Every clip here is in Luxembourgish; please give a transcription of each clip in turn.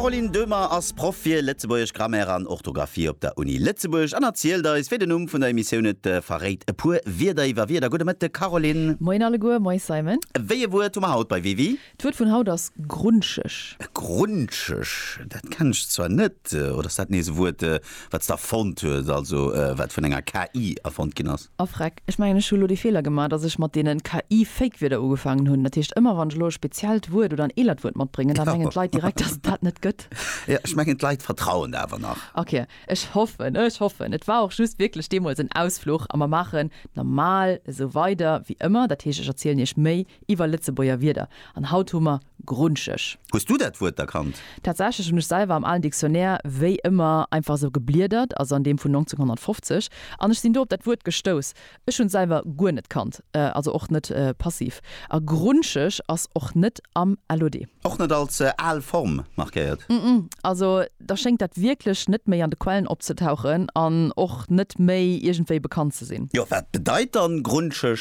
D'Caroline Döhmer ass Proff fir Lëtzebuergesch Grammaire an Orthografie op der Uni Lëtzebuerg an erzielt eis, wéi den Numm vun der Emissioun et verréit, e puer Wierder iwwer Wierder. Gudde Mëtteg, Caroline. Moien alleguer, moies Simon. Wéi e Wuert hu mer haut bei WiWi? D'Wuert vun haut ass grunscheg. Grunscheg, dat kennen ech zwar net. Oder ass dat nees e Wuert, wat s de erfonnt hues, also wat vun enger KI erfonnt ginn ass? A Freck, ech mengen, ech hu lo dee Feeler gemaach, datt ech mat deenen KI-Fake-Wierder ugefaangen hunn. Dat heescht, ëmmer wann ech elo e speziellt Wuert oder en eelert Wuert matbréngen, da mengen d'Leit direkt, datt et dat net gëtt. Jo, ech mengen d'Leit vertrauen der awer nach. Ok, ech hoffen, ech hoffen. Et war och just wierklech deemools en Ausfluch. A mer maachen normal esou weider wéi ëmmer. Dat heescht, ech erzielen Iech méi iwwer Lëtzebuerger Wierder. An haut hu mer. grunscheg. Hues du dat Wuert erkannt? Tatsächlech hunn ech selwer am alen Dictionnaire wéi ëmmer einfach esou gebliedert, also an deem vun 1950, an ech sinn do op dat Wuert gestouss. Ech hunn et selwer guer net kannt, also och net passiv. A grunscheg ass och net am LOD. Och net als al Form markéiert? Ëmm, ëmm, also da schéngt dat wierklech net méi an de Quellen opzetauchen an och net méi iergendwéi bekannt ze sinn. Jo, wat bedeit dann grunscheg?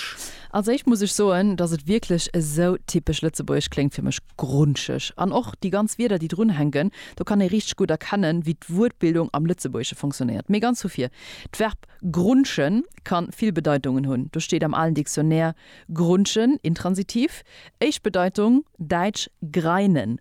Als éischt muss ech soen, dass et wierklech esou typesch lëtzebuergesch kléngt fir mech, grunscheg. An och déi ganz Wierder, déi drun hänken, do kann ee richteg gutt erkennen, wéi d'Wuertbildung am Lëtzebuergesche fonctionnéiert. Mee ganz vu vir, d'Verb grunschen ka vill Bedeitungen hunn. Do steet am alen Dictionnaire grunschen, Intransitiv, éischt Bedeitung, däitsch greinen,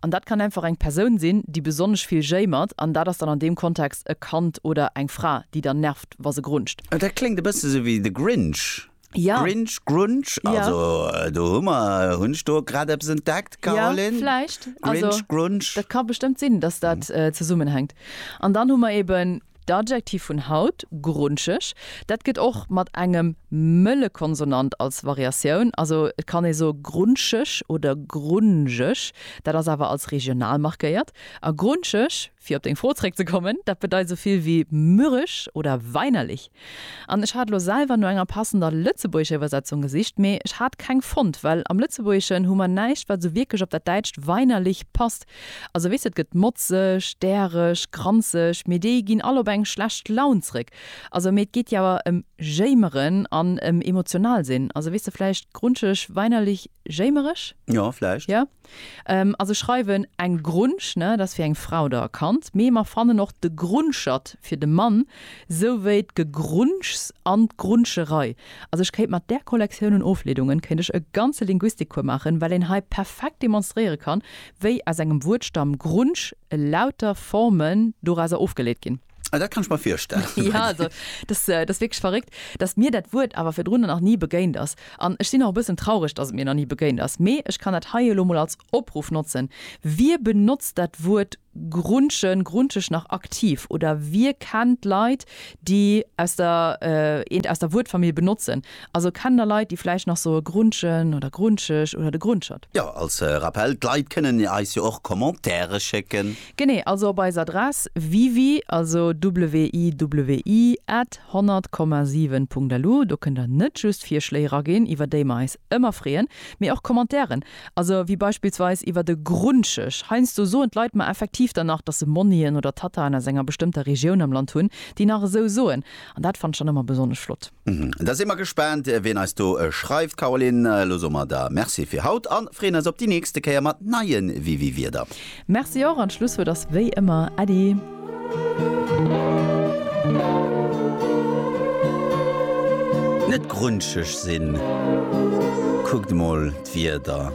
An dat kann einfach eng Persoun sinn, déi besonnesch vill jéimert, an dat ass dann an deem Kontext e Kand oder eng Fra, déi dann nervt, wa se grunzt. Oh, dat kléngt e bësse sou wéi The Grinch. Ja. Grinch, Grunch, Ja. also do hu mer, hunn ech do grad eppes entdeckt, Ja, Caroline? vläicht. Also, Grinch, Grunch. dat ka bestëmmt sinn, dass dat zesummenhänkt. An dann hu mer eben. D'Adjektiv vun haut, grunscheg, dat gëtt och mat engem mëlle Konsonant als Variatioun, also et kann ee soe grunscheg oder grunjeg, dat ass awer als regional markéiert. A grunscheg, fir op deng Fro zréckzekommen, dat bedeit esou vill wéi mürrisch oder weinerlich. An ech hat elo selwer no enger passender lëtzebuergescher Iwwersetzung gesicht, mee ech hat keng fonnt, well am Lëtzebuergeschen hu mer näischt, wat esou wierklech op dat däitscht weinerlich passt. Also weess et gëtt motzeg, däreg, granzeg, mee déi ginn all op eng schlecht Laun zréck. Also mee et geet jo awer em jéimeren an em emotional sinn. Also weess de vläicht grunscheg, weinerlich, jéimereg? Jo, vläicht. Jo. Also schreiwen eng Grunsch, ne, dat ass fir eng Frau oder e Kand, mee mer fannen och de Grunschert fir de Mann, sou wéi d'Gegrunschs an d'Grunscherei. Also ech kéint mat där Kollektioun un Ofleedungen kéint ech e ganze Linguistikcours maachen, well een hei perfekt demonstréiere kann, Wéi aus engem Wuertstamm grunsch elauter Formen dorauser ofgeleet ginn. Ah, dat kann ech mer virstellen. Ja, also dat ass wierklech verréckt, datt mir dat Wuert awer virdrun nach ni begéint ass. An ech sinn och e bëssen traureg, datt et mir nach ni begéint ass. Mee ech kann dat hei elo mol als Opruff notzen, Wie benotzt dat Wuert grunschen, grunscheg nach aktiv? Oder wie kennt Leit, déi aus der, eent aus der Wuertfamill benotzen? Also kennt der Leit déi vläicht nach soe Grunschen oder Grunscheg oder de Grunschert? Jo, als Rappel, d'Leit kënnen eis jo och Commentaire schécken. Genee, also op eis Adress wiwi, also WIWI at 100, 7 Punkt LU. Do kënnt der net just Virschléi eraginn, iwwer déi mer eis ëmmer freeën, mee och Commentairen, also wéi beispillsweis iwwer de Grunscheg. Heiansdo soen d'Leit mer effektiv dann nach, dass se Monnien oder Tataen aus enger bestëmmter Regioun am Land hunn, déi nach esou soen, an dat fannt ech dann ëmmer besonnesch flott. Da si mer gespaant, wien eis do schreift. Caroline, elo soe mer der Merci fir haut a freeën eis op déi nächste Kéier mat neie WiWiWierder. Merci och an d'Schlusswuert ass wéi ëmmer Äddi. Net grunscheg sinn, kuckt mol d'Wierder.